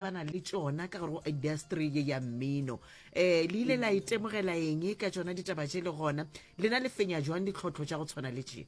ba na le tšona ka gare go industry ye ya mmino um le ile la itemogela e eng ka tšona ditaba tše le gona lena le fenya jwang ditlhotlho tša go tshwana le tše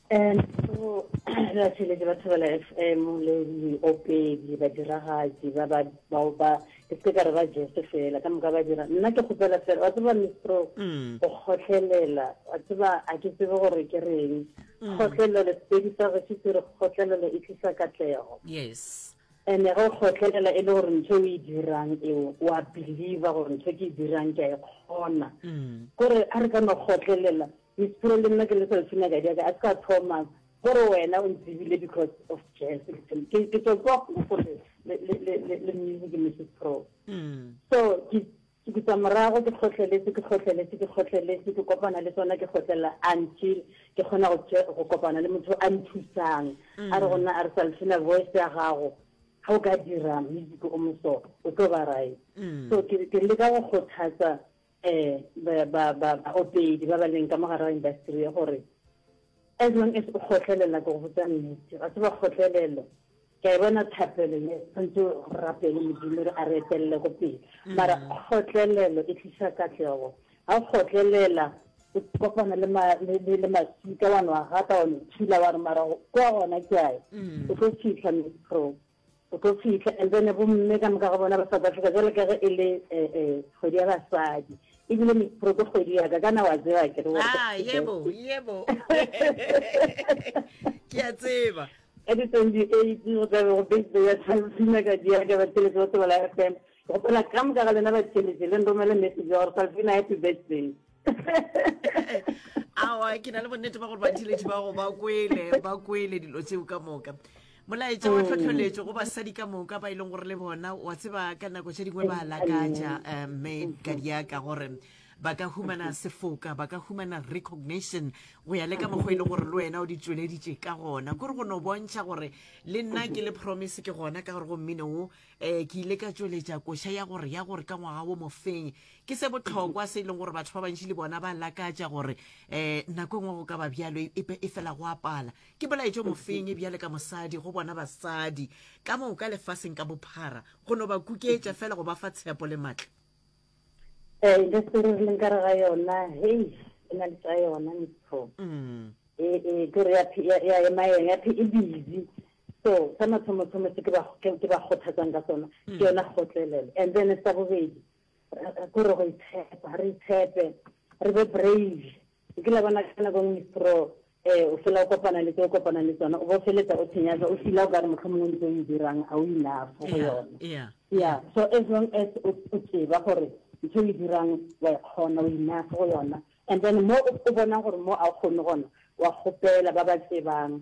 um so ra tšheletse batho ba la f m le diopedi badiragatsi ba ba bao ba ke se ka re ba jese fela ka moka ba dira nna ke kgopela fela wa tseba mistro mm. go kgotlhelela wa tseba a ke tsebe gore ke reng Mm. kgotlelelo sepedi sa gešo se re kgotlelelo e tlisa katlego yes ande ge o kgotlelela e le gore ntho o e dirang eo wa believer gore ntho ke e dirang ke a e kgona mm. kore a re ka no kgotlelela misepiro le nna ke le selfina ka diaka a se ka thomas kore wena o ntsebile because of jazz ke tswa kwa kgofole le music misepiro mm. so ke Ke dutsa morago, ke kgohleletše, ke kgohleletše, ke kgohleletše, ke kopana le tsona, ke kgotlelela until ke kgona go tše, go kopana le motho a nthusang. A re go nna, a re Salfina, voice ya gago ga o ka dira music o moso, o tlo ba right. So ke, ke leka go kgothatsa um ba, ba, ba, baopedi ba ba leng ka mo gare ga industry ye gore as long as o kgohlelela, ke go botša nnete, wa tseba kgohlelelo, Ke a e bona thapelo ye, tshwanetse re rapele Modimo re a re etelele go pele. Mara kgotlelelo e tlisa katlego. Ga o kgotlelela, o kopana le ma le le le masika wa no a gata wa no thula wa re mara go- kwa gona ke ae. O tlo fitlha metro. O tlo fitlha and then bomme ka moka ga bona ba South Africa jwale ka ge e le eh, eh, kgwedi ya basadi. Ebile metro ke kgwedi ya ka, kana wa tseba akere gore ke Ah, yebo, yebo. Ke a tseba. Ka di 28 go tla be go beitlo ya Salvina ka di ya ka ba theletše go tsebala FM. Ke kgopela ka moka ga lena ba theletše le nromele message ya gore Salvina happy birthday. Awa ke na le bonnete ba gore ba theletše ba go ba kwele ba kwele dilo tseo ka moka. molaetša wa mm. tlhotlholetšo go basadi ka moka ba e leng gore le bona wa tseba ka nako tše dingwe ba lakatša um eh, mme ka diaka gore ba ka humana sefoka ba ka humana recognition go ya le ka mokgwa e le gore le wena o di tšweleditše ka gona kore go no bontšha gore le nna ke le promise ke gona ka gore go mmino wo um eh, ke ile ka tšweletša koša ya gore ya gore ka ngwaga wo mofeng ke se botlhokwa se e leng gore batho ba bantši le bona ba lakatša gore um nako engwe go ka ba bjalo e, e, e fela go apala ke bolaetšo mofeng e bjale ka mosadi go bona basadi ka moka lefaseng ka bophara go no ba kuketša fela go ba fa tshepo le maatla Eh, industry re leng kare ga yona hei e na le tsa yona motho mm. e e ke re ya ya ya ema yona ya phi e busy so sa mathomo thomo se ke ba ke ba khothatsang ka sona mm. ke yona khotlelelo and then sa bobedi go re go itshepa re itshepe re be brave O kile wa bona ka nako nngwe Pro, e, o fela o kopana le tse o kopanang le tsona, o bo feletsa o tshenyaga, o fila o ka re mohlomongwe ntse o e dirang ga o enough go Yeah, yona. yeah, Yeah, so as long as o o tseba gore ntho e o e dirang wa e kgona, o enough go yona, and then mo o o bonang gore mo a o kgone gona, wa kgopela ba ba tsebang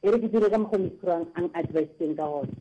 E re ke dire ka mokgwa Mithurang a n-advisitseng ka gona.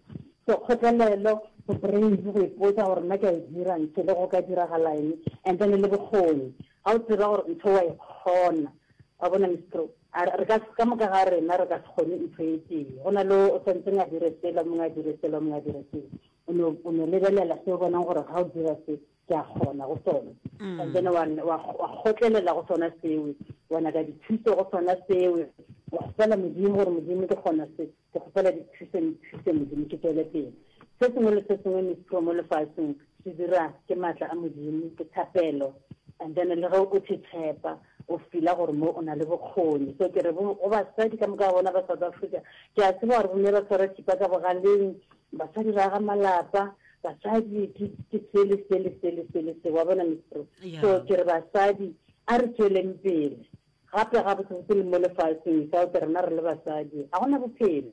Sekgotlelelo, go brains, go ipotsa gore nna ke a e dira ntho le go ka diragalaeng and then le bokgoni. Ga o tseba gore ntho o a e kgona, wa bona Mithru, a re ka, ka moka ga rena re ka se kgone ntho e tee. Go na le o sa ntseng a dire sela, o mongwe a dire sela, o mongwe a dire sela. O no, o no lebelela se o bonang gore ga o dira se, ke a kgona go sona mm. and then wa kgotlelela go sona seo wa nyaka dithuso go sona seo wa kgopela modimo gore modimo ke kgona se ke kgopela dithuso nthuse modimo ke tswele pele se sengwe le se sengwe mistro mo lefatsheng se dira ke maatla a modimo ke thapelo and then le ge o thetshepa o fila gore mo o na le bokgoni so ke re go basadi ka moka bona ba south africa ke a tseba gore bomme ba tshwara thipa ka bogaleng Basadi ba aga malapa, basadi ke ke sele sele sele sele se wa bona mistro. Yeah. So ke re basadi a re tsweleng pele. Gape ga botse botse le mo lefatsheng without rena re le basadi ga gona bophelo.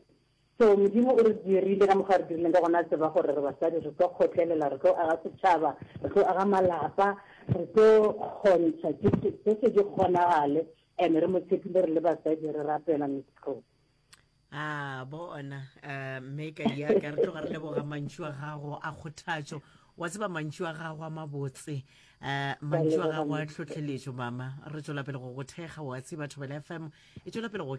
So modimo o re dirile ka mokgwa re dirileng ka gona tseba gore re basadi re tlo kgotlelela, re tlo aga setšhaba, re tlo aga malapa, re tlo kgontsha ke se ke se di kgonagale and re mo tshepile re le basadi re rapela mistro. a bona mme ka ya ka re tloga re leboga mantšu a gago a kgothatšo wa tseba mantšu a gago a mabotse um mantšu a gago a tlhotlheletšo mama re tswela pele go go thekga wa tseba thobela fm e tswela pele go